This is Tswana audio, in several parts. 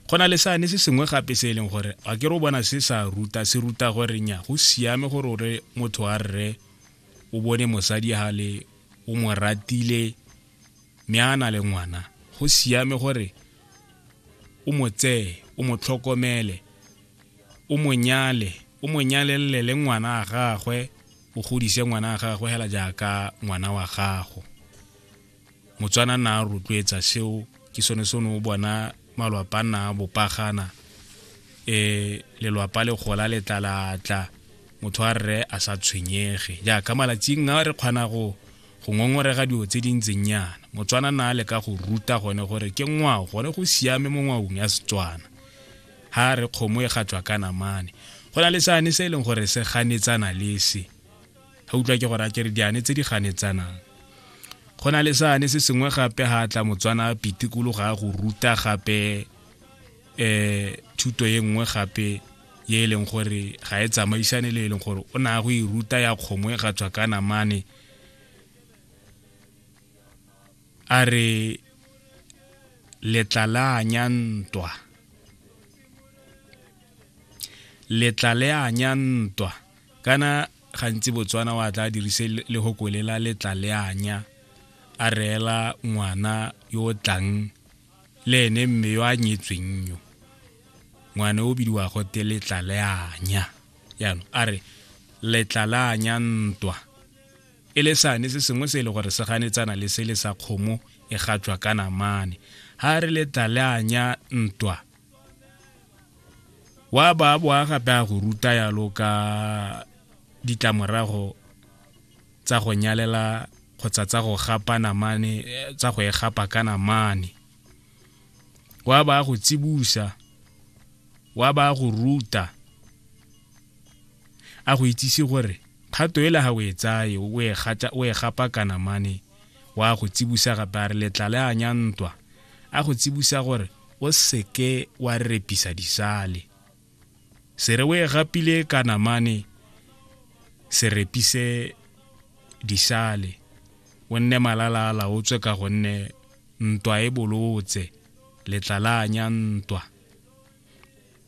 go na le sane se sengwe gape se e leng gore a ke re o bona se sa ruta se ruta gore nya go siame gore o re motho a rre o bone mosadi ga le o mo ratile mme a na le ngwana go siame gore o mo tseye o mo tlhokomele o mo nyale o mo nyalelele le ngwana a gagwe o godise ngwana a gagwe hela jaaka ngwana wa gago motswana na a rotloetsa seo ke sone se ne o bona malwapa na bopagana um lelwapa le gola le tlalatla motho a rre a sa tshwenyege jaaka malatsing a re kgona go go ngongorega dilo tse di ntseng yana motswana na le ka go ruta gone gore ke ngwao gone go siame mo ngwaong ya setswana ha re kgomo e gatswa ka namane go na le sane se e leng gore se ganetsana le se ga utlwa ke gore a kere diane tse di ganetsanang go na le sane se sengwe gape ga tla motswana pitikolo ga go ruta gape um thuto ye nngwe gape ye e leng gore ga e tsamaisane le e leng gore o na go e ruta ya kgomo e ga tswa ka namane a re letla la anya ntwa letla le anya ntwa kana gantsi botswana wa tla dirise le go kolela letla le anya a reela ngwana yo o tlang le ene mme yo a nyetsweng yo ngwana o bidiwa gote letla le anya jaanong a re letla le anya ntwa e le sane se sengwe se e le gore se ganetsana le se le sa kgomo e gatswa ka namane ga re letla le anya ntwa wa ba boa gape a go ruta yalo ka ditlamorago tsa go nyalela kgotsa tsa go gapa namane tsa go e gapa ka namane wa ba go tsibusa wa ba go ruta a go itsise gore kgato e le ga o e tsaye o e gapa ka namane wa go tsibusa gape a re letlale a nya ntwa a go tsibusa gore o seke wa repisa disale se re o e gapile ka namane se repise disale o nne malala a laotswe ka gonne ntwa e bolotse letlalanya ntwa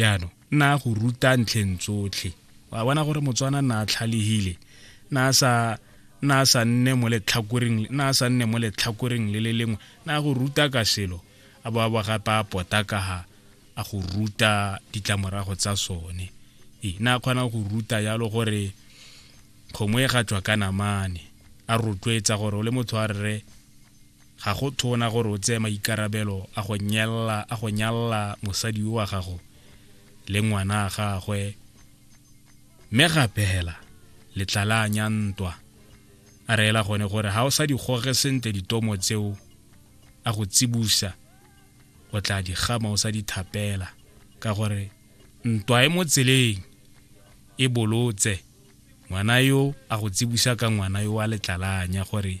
yaanong nna go ruta ntlheng tsotlhe wa bona gore motswana nna a tlhalegile nna a sa nna a sa nne mo letlhakoreng nna a sa nne mo letlhakoreng le le lengwe nna go ruta ka selo a bo a bo gape a pota ka ga a go ruta ditlamorago tsa sone ee nna a kgona go ruta yalo gore kgomo e ga tswa ka namane a rotloetsa gore o le motho a rre Ga go tona gore o tseye maikarabelo a go nyella a go nyalla mosadi yo wa gago le ngwana a gagwe mme gape hela letlalanya ntwa a reela gone gore ga o sa di goge sentle ditomo tseo a go tsibusa o tla di gama o sa di thapela ka gore ntwa e mo tseleng e bolotse ngwana yo a go tsibusa ka ngwana yo wa letlalanya gore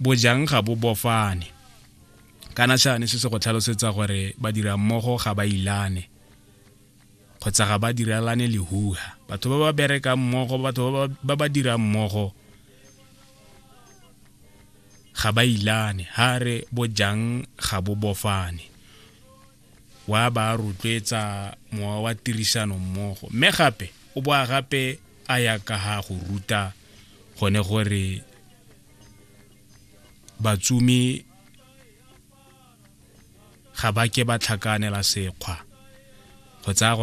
bojang ga bo bofane kana shane se se go tlhalosetsa gore badira mmogo ga ba ilane kgotsa ga ba diralane lehuha batho ba ba berekang mmogo batho ba ba dirang mmogo ga ba ilane ha re bojang ga bo bofane wa ba rotloetsa mowa wa tirisano mmogo mme gape o boa gape a ya ka ga go ruta gone gore batsumi ga ba ke ba tlhakanela sekgwa go tsaya gore